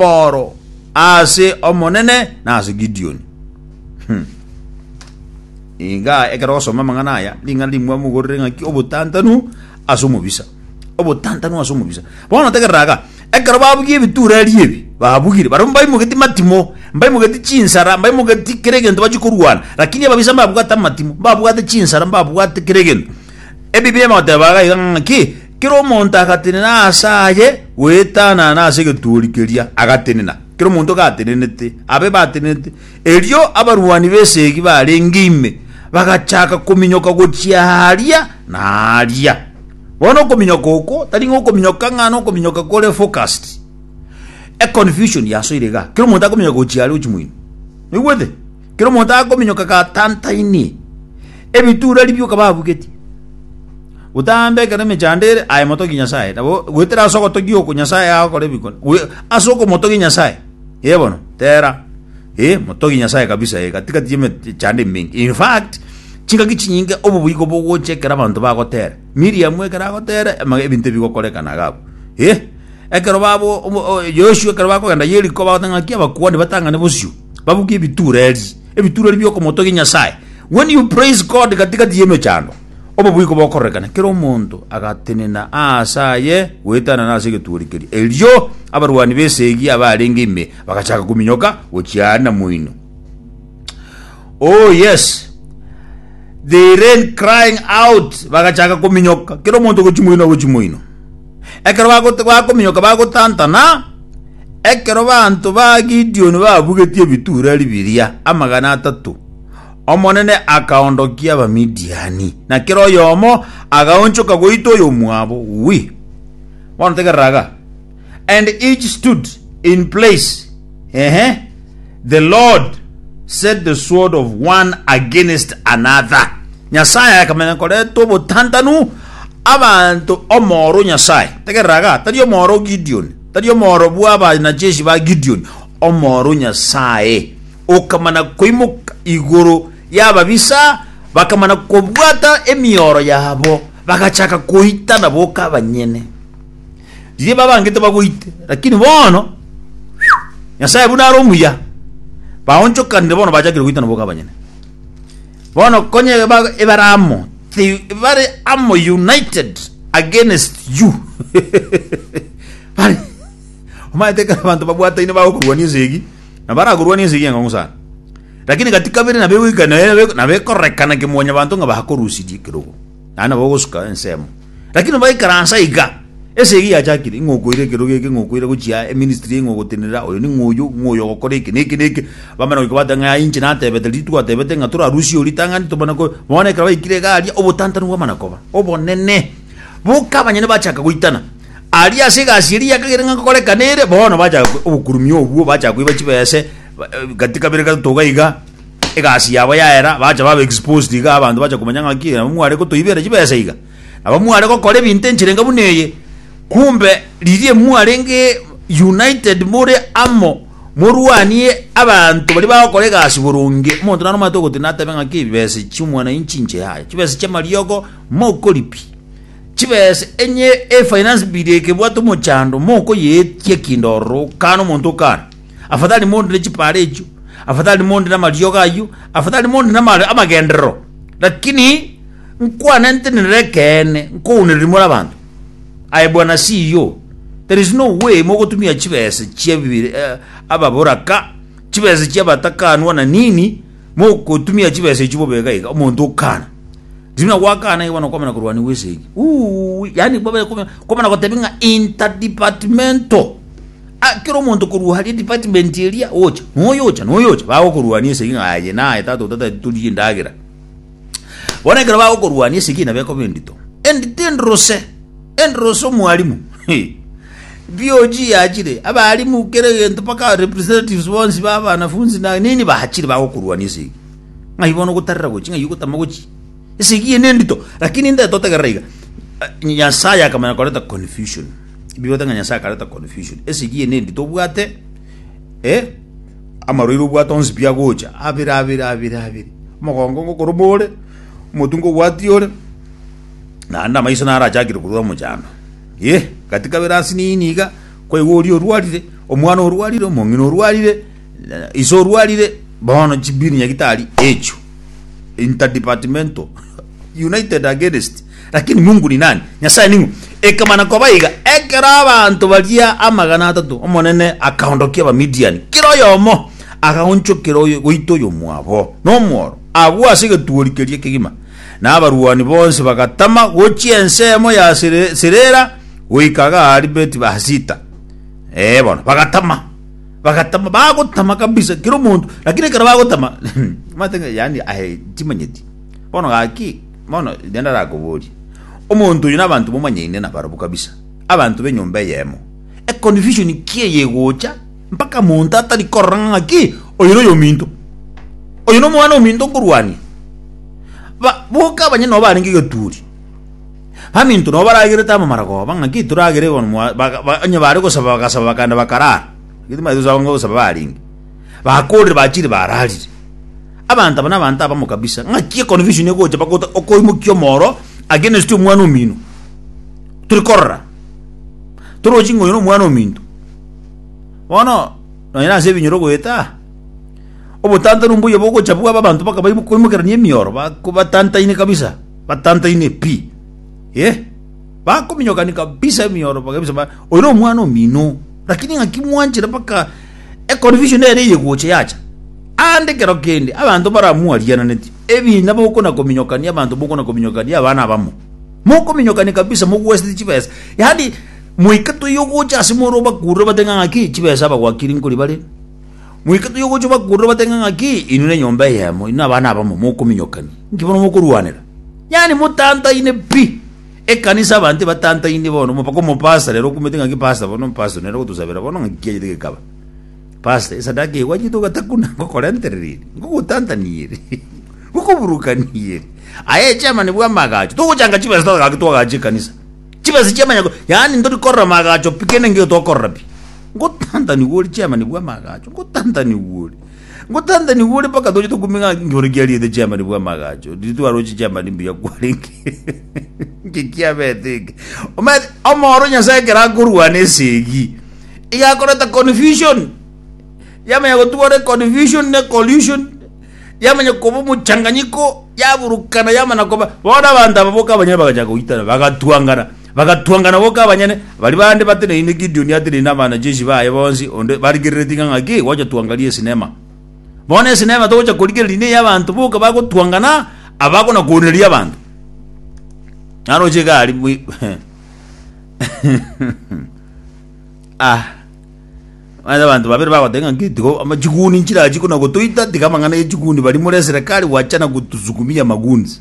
Paul ase Omonene na ase Gideoni. Hmm. Iga ekero osoma amang'ana aya, ring'ana rimwe mogorere ng'aki obotantanu ase omobisa. Obotantanu ase omobisa. Bono tegerera aga, ekero babugia ebitureri ebi, babugire, barimo baimogeti matimo, mbaimogeti chinsara, mbaimogeti kera egento bachi korwana, lakini ababisa mbabwate amatimo, mbabwate chinsara, mbabwate kera egento. Ebibia emoteba iga ng'aki Kera omonto agatenena aase aye goetanana ase egetuuri keria agatenena, kera omonto gatenenete, abe batenenete. Erio abarwani b'esegi barenge ime bagachaka kominyoka gochia aaria na aaria. Bono okominyoka oko tari ng'a okominyoka ng'a nokominyoka kore focused. Econfusion yasoire iga, kera omonto akominyoka gochia aaria gochia moino. Noigwete? Kera omonto akominyoka gatantaini, ebitureri bi'okaba abugeti. Gotambe ekero emechando ere, aye motogie Nyasae, nabo goetera ase ogotogia oko Nyasae agokora ebikone, goe- ase okomotogia Nyasae, ee bono, tera, ee, motogie Nyasae kabisa ee, gati gati eme- chando emenke. In fact, chingaki chinyinge obo boigo bogocha ekero abanto bagotera. Miriamu ekero agotera, ama- ebinto ebi bigokorekana iga abwo. Ee, ekero babo- obo- o- Yoshua ekero bakogenda Yeriko bagoteba ng'aki abakuani batang'ane bosio. Babuge ebitureri, ebitureri bi'okomotogia Nyasae. When you praise God gati-gati y'emechando, obobuya bogororekana, kera omonto agatenena aase aye goetanana ase egetuuri keria. Erio abarwani b'esegi abarenge ime bagachaka kominyoka gochia aria namoino. Oh yes, they ran crying out, bagachaka kominyoka, kera omonto gochia moino gochia moino. Ekero bago- bakominyoka bagotantana, ekero baanto ba Gideoni babugetie ebitureri biria amagana atato, Omonene akaondokia Abamidiani, na kera oyomo agaonchoka goita oyomwabo. Wi. Bono tegerera iga. And each stood in place. Ehe. The Lord set the sword of one against another. Nyasae akamenya koreta obotantanu abanto omoro Nyasae. Tegereraga, tari omoro Gideon, tari omoro bwa abanajeshi ba Gideon, omoro Nyasae. Okamana koimoka igoro yababisa, bakamana kobwata emioro yabo, bagachaka koitana boka abanyene. Riria babangete bagoite, lakini bono Nyasae buna are omuya, baonchokanire bono bachakire goitana boka abanyene. Bono konya eba- ebare amo, ti- bare amo united against you. Bare omanyete ekero abanto babwataine bagokorwania esegi, na barakorwania esegi eng'ong'o sana. Lakini gati kabere nabegoika nabe- nabekororekana kimwanyabanto ng'a bakorusirie ekerogo. naende nabo ogosuka ensemo. Lakini baikaransa iga, ase eyio yachakire, ing'o okoira ekerogo eke, ing'o okoira gochia eministry eye, ing'o ogotenenera oyo ning'o oyio, ing'o oyo ogokora eke na eke na eke, bamanya goika bateba ng'a inche natebete riria twatebete ng'a torarusie oyo ritang'ani tobone ko, bono ekero baikire iga aria, obotantanu bwamana koba obonene, boka abanyene bachaka goitana. Aria ase egasi eria yakagera ng'a nkorekana ere, bono bachaka obokurumia obwo, bachaka koiba chibese, gati kabere gatato iga iga. egasi yabo yaera, bacha baba exposed iga, abanto bacha komanya ng'aki nabo mware gotoibeera chibesa iga, nabo mware gokora ebinto enchera enga buna eye, kumbe riria mwarenge united more amo morwanie abanto baria bagokora egasi boronge, omonto naro omanyete ogotenena atebe ng'aki ebibesa ebi chi'omwanainchi inche yaya, chibesa chi'amariogo mokoripia, chibesa enye efinance bill eke ebwate omochando mokoyeetia kinde ororo okana omonto okana. Afadhali mondi ne chipaara echio, afadhali mondi namariogo ayio, afadhali mondi nama- amagenderero. Lakini nkwane ntenenere ekeene, nkounereria more abanto. Aye bwana CEO, there is no way mogotumia chibesa chia bibiri- eh, ababoraka, chibesa chia abatakanwa na nini, mogotumia chibesa echio bobe iga iga, omonto okana. Riria buna gwakana iga bono kwamana korwania gwe esegi. Uuwi, yaani bobe- kwamana gotebi ng'a interdepartmental. Aa, kera omonto korwa aria department eria, ocha, noyo ocha, noyo ocha, bagokorwania esegi ng'a aye naye tata otateti torie endagera. Bono ekero bagokorwania esegi nabo ekoba endito. Endito endrose, endrose omwarimu. Hee. BOG yachire, abarimu kera egento mpaka representatives bonsi ba abanafunzi na nini bachire bagokorwania esegi. Ng'ai bono ogotarera gochi, ng'ai ogotama gochi. Esegi eye nendito, lakini nde totegerera iga, Nyasaye akamanya korenta confusion. Bigoteba ng'a Nyasae akareta confusion. Esegi eye nendi tobwate eh amarwaire obwate onsi pi agocha abere abere abere abere. Omogongo ngokoroma ore, omotu ngobwati ore, naende amaiso naro achakire korwa omochando. Yeh gati kabere ase nini iga, kwaigwa oria orwarire, omwana orwarire, omong'ina orwarire, ise orwarire, bono chibini nyagitari echio, interdepartmental. United against lakini Mungu ni nani? Nyasaye ning'o? Ekamana koba iga, ekero abanto baria amagana atato, Omonene akaondokia Abamidiani, kera oyomo agaonchokera oyo goita oyomwabo nomworo, agwo ase egetuori keria kegima, na abarwani bonsi bagatama gochia ensemo ya Sere- Serera goika Gaari Beti Bahasita. Eh, bono bagatama bagatama bagotama kabisa kera omonto lakini ekero bagotama matenge yani aye timanyeti Bono gaki, bono riria ndarakoborie, omonto oyo nabanto bomanyaine nabarabwo kabisa, abanto b'enyomba eyemo, econfusion ki eye egocha mpaka monto atari korora ng'a ng'aki oyo noyo ominto, oyo nomwana ominto nkorwania? Ba boka abanyene nabo barenge egeturi, baminto nabo baragerete amamara koba ng'aki toragere bono mwa ba onye bare gosaba bagasaba bakagenda bakarara, gete mbaete gosaba barenge. bakoorire bachiire baararire. Abanto aba nabanto abamo kabisa, ng'aki econfusion egocha mpaka ota- okoimokia omoro against omwana omino. Tiri korora, torochi ng'a oyo nomwana ominto. Bono, nonye nase ebinyoro goeta, obotantanu mbuya bogocha bwabe abanto mpaka baimo- koimokerania emioro, bako- batantaine kabisa, batantaine pi, eh. Bakominyokani kabisa emioro bakabisa ba oyo nomwana omino, lakini ng'aki mwanchire mpaka. Econfusion ere eyegocha yacha aande ekero kende abanto baramwariananetie, ebiina bokona kominyokania abanto bokona kominyokania abana abamo. Mokominyokania kabisa mogwesete chibesa. Yaani moika toyogocha ase more obakurure bate ng'a ng'aki chibesa abagwakiri nkori bare. Moika toyogocha obakurure bate ng'a ng'aki inwe ne nyomba eyemo, inwe abana abamo mokominyokania. Inki bono mokorwanera? Yaani motantaine pi. Ekanisa abanto ebatantainie bono, omo- mpaka omopasta rero okumete ng'a ki pasta bono, omopasta nere ogotosabera bono ng'a ki kiachete gekaba. Pasta, esadaka eye gwachete ogatakuna, ngokorentereri eri, ngogotantania eri, ngokoburukania eri. Aye echairman bwa amaagacho, togochanga chibesa totaka gaki twagacha ekanisa. Chibesa chia amanyako, yaani ntori korora amaagacho pi kende nkeiyo tokorora pi. Ngotantanigwe ori chairman bwa amaagacho, ngotantanigwe ori. Ngotantanigwe ore mpaka toche tokumie ng'a inyore kiariete chiamani bw'amagacho, riria twaroche chiamani mbuya kwarenge. Inki kiabete eke? Omanyete, omoro Nyasae ekero akorwana esegi, iga akoreta confusion. Yamanya gotugwa ore confusion ne collusion, yamanya koba omochanganyiko, yaburukana yamana koba. Bono abanto aba boka abanyene bagachaka goitana, bagatwangana. Bagatwangana goka abanyene, baria bande bateneine Gideoni ateneine abanachechi baye bonsi, onde barigereretie ng'a ng'aki, gocha twangarie esinema. Bono esinema togocha korigereria neye abanto boka bagotwangana, abagona koonereria abanto. Naroche iga ari bwe ah Manye abantu babere bagoteba ng'a ng'iti go ama chiguni nchirachi kona gotoita tiga amang'ana ye chiguni bari more eserekari gwachana gotusukumia maguns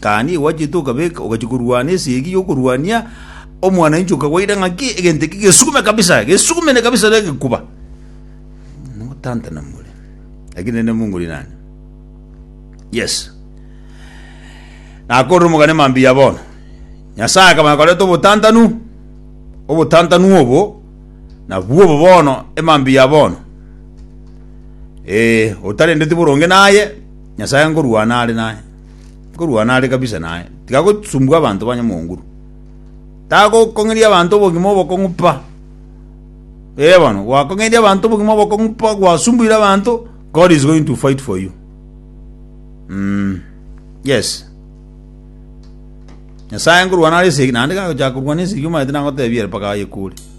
Tani igo gwachiete okabeka, ogachia korwana esegi y'okorwania omwananchi okagwaira ng'aki egento eki gesugume kabisa, gesugumene kabisa na egekuba. Notantana more. Lakini nende Mungu ni nani? Yes. Nakorire omogane mambia bono. Nyasaye akamanya koreta obotantanu, obotantanu obo, nabwo obo bono, emambia bono. Eh, otarendeti boronge naye, Nyasae ngorwana are naye, ngorwana are kabisa naye, tiga gosumbua abanto ba nyamonguru. Tagokong'eria abanto obogima obokong'u pa. Ee bono, gwakong'eirie abanto obogima obokong'u pa, gwasumbuire abanto, God is going to fight for you. Mm. Yes. Nyasae ngorwana are esegi, naende gagochaka korwana esegi omaete nagotebia ere mpaka ayekure.